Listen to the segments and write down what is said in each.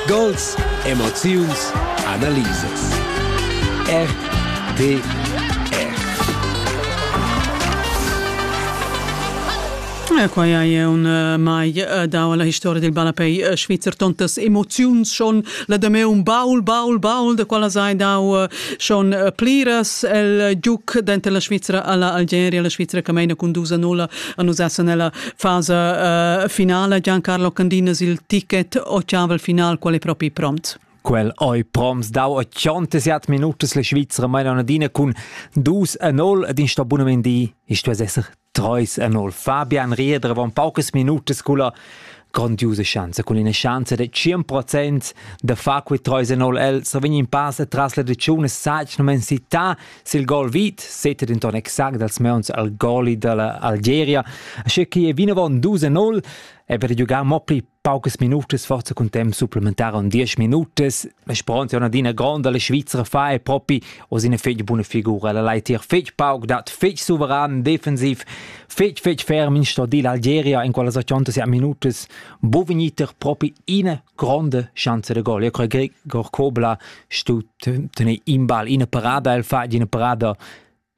Gols, emoziuns, analisas. RTR. E quai è un eh, mai eh, dau alla historia del balapei eh, Schweizer tontas emoziuns schon la da me un baul baul baul da quella sai dau schon pliras el giuc denter la Svizzera alla Algeria la Svizzera che meina con dusa nulla Anusa sun ella fasa uh, finala Giancarlo Candinas il ticket ochavel final quale propi prompt. Quel oi proms dau 87 minutas la Schweizer Mainonadina cun 2 a 0 ed in stabunamendi ist was esser 3 a 0. Fabian Rieder von paucas minutas culla grandiose Chance, con una chance de 100% de fa quei 3 a 0 el, se vegn in pass tras la decione sagno men città Sil gol vit seta denton exact dals meuns al goli dalla Algeria, asche che vinavon 2-0 e per giugar mo pli paucas minutas forza cun temp supplementar on 10 minutas. Speranza è adina gronda, la Svizzera fa e propi os ina fetg buna figura. La leitier fetg pauc dat, fetg suveran, defensiv, fetg fetg ferm in stordil Algeria in quella 80 minutas. Bo vegniter propi ina gronda chance de gol. Io crei Gregor Kobla stu tener in ball ina parada el fa ina parada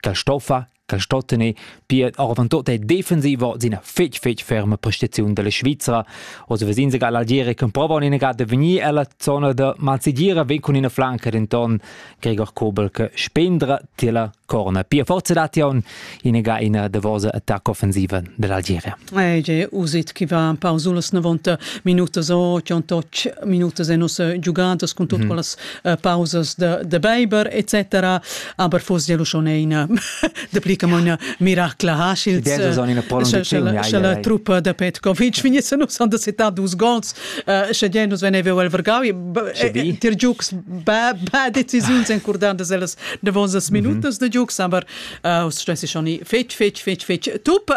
che stoffa che sto tener pia oravant tot è defensivo sin fetg fetg ferma prestaziun della Svizzera also wir sind sogar l'Algeria che prova in ga de venir alla zona de Mazzigira ven con ina flanca denton Gregor Kobel che spendra tila Corna pia forza datiun inega ina davosa attacca offensiva dell'Algeria. Ege usit chi va par sulas 90 minutas o 108 minutas en nossa giugadas con tut mm. quellas uh, pausas de, de Beiber etc. Aber fos ja schon ina de pli come una miracla Haschils. Äh, sche la truppa de Petkovic vinesse nus han de setat dus gols Schadia nus venevel el vargau tier giucs ba decisiuns encordandas ellas davosas minutas de giucs aber us stessi schon fetg fetg fetg fetg tup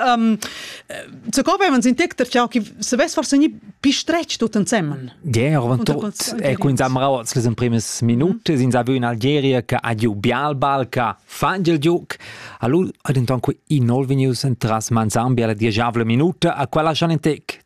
ze co wenn uns in tecter ciao chi se ves forse ni pistretg tut ensemmen Ger e quins am rauts les in primis minute sin saviu in Algeria che ha giu Bialbal che fa il giuc allu ad inton qui in nol venius entras Manzambi alla diesavle minuta a quella schon in tec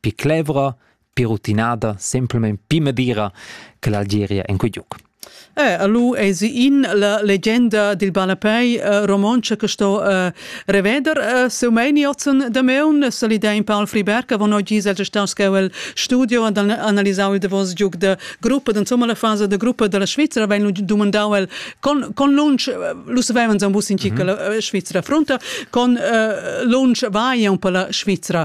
pi clevra, pi rutinada, semplamein pi madira che l'Algeria en quei giug. Eh, allu esi in la legenda dil balapei uh, romontscha che sto uh, reveder uh, seu meiniotzen de meun solida in Paul Friberg avon oggi se gestan scheu studio ad analisau il davos giug de gruppa insomma la fase de gruppa della Svizzera wenn dumandau el con con lunch lu savevans un bus in cica mm -hmm. la Svizzera fronta con uh, lunch vai un po la Svizzera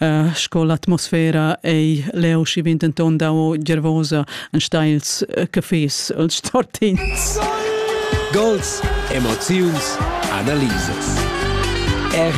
Uh, sco l'atmosfera ei leu schi bin denton dau gervosa en steils uh, cafés els tortins. Gols, emoziuns, analisas. Er